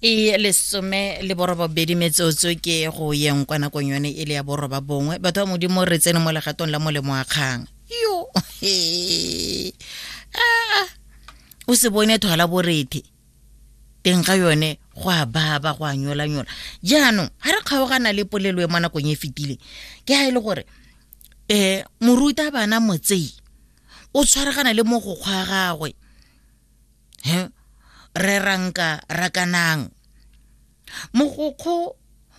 e lesome le borobabedi metsotso ke go yeng kwa nakong yone e le ya boroba bongwe batho ba modimo re tsene mo legatong la molemo wa kgang yo ah, o se bone thwala borethe teng ga yone go a baba go a nyolanyola jaanong ga re kgaogana le polelo e mo nakong e fetileng ke ga e le gore um moruta bana motsei o tshwaragana le mo go kgwa gagwe he re ranka rakanang mogokgo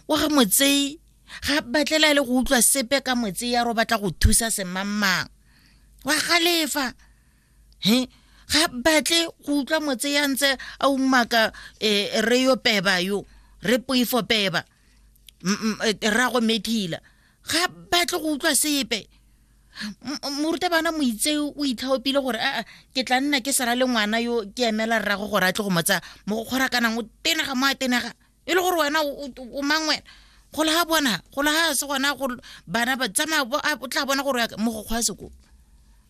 wa ga motsei ga batlela le go utlwa sepe ka motsei ya ro batla go thusa semammang wa galefa he ga batle go utlwa motse ya ntse a umaka um re yo peba yo re poifo peba eh, rrago methila ga batle go utlwa sepe morutabana moitse o itlhaopile gore aa ke tla nna ke sala le ngwana yo ke emela rrago gore a tle go motsa mo go kgorakanang o tenega mo a tenega e le gore wena o mang wena gola ga bona gola ga se gona go bana ba tsamaya o tla bona gore mogokgwa a sekolo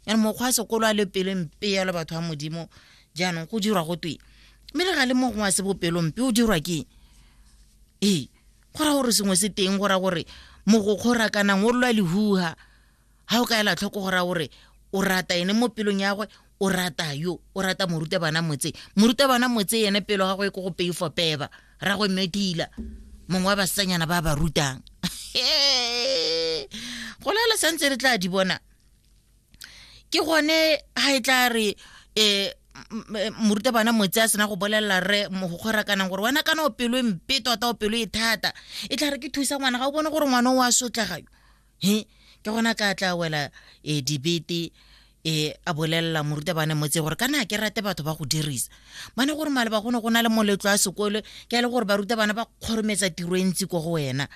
yana mogokgwa a sekolo a le pelompe yalo batho ba modimo jaanong go dirwa go twe mme le ga le mogongwe a se bopelompe o dirwa ke ee go ra gore sengwe se teng go ra gore mogokgo ra kana o lwa lehuha ga o ka ela tlhoko go ra gore o rata ene mo pelong ya gwe o rata yo o rata morutabana motse morutabana motse ene pelo ga go e ko go peifo peba ra go medila mongwe wa basanyana ba ba rutang go lela santse re tla di bona ke gone ha e tla re eh moruta bana motse a sena go bolelela re mogogora kanang gore wena kana o pelo e mpe tota o pelo e thata e tla re ke thusa ngwana ga o bone gore ngwana o a sotlagayo he ke gona ka tla wela um debete um a bolelela moruta bane motse gore kana ke rate batho ba go dirisa bane gore maleba gone go na le moletlo a sekole ke a le gore baruta bana ba kgorometsa tiro e ntsi ko go wena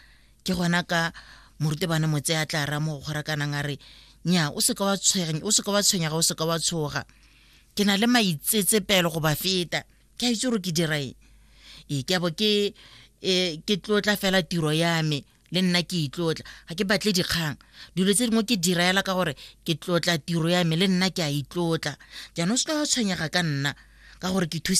ke gona ka morutebane motse a tla ra mo go gorakanang a re nya o seka wa tshwenya o seka wa tshwenya ga o seka wa tshoga ke na le maitsetsepelo go ba feta ke a itse gore ke dira eng ee ke abo ke e, ke tlotla fela tiro ya me le nna ke itlotla ga ke batle dikgang dilo tse dingwe ke diraela ka gore ke tlotla tiro ya me le nna ke a itlotla jaanong se tla tshwenyega ka nna ka gore ke thusa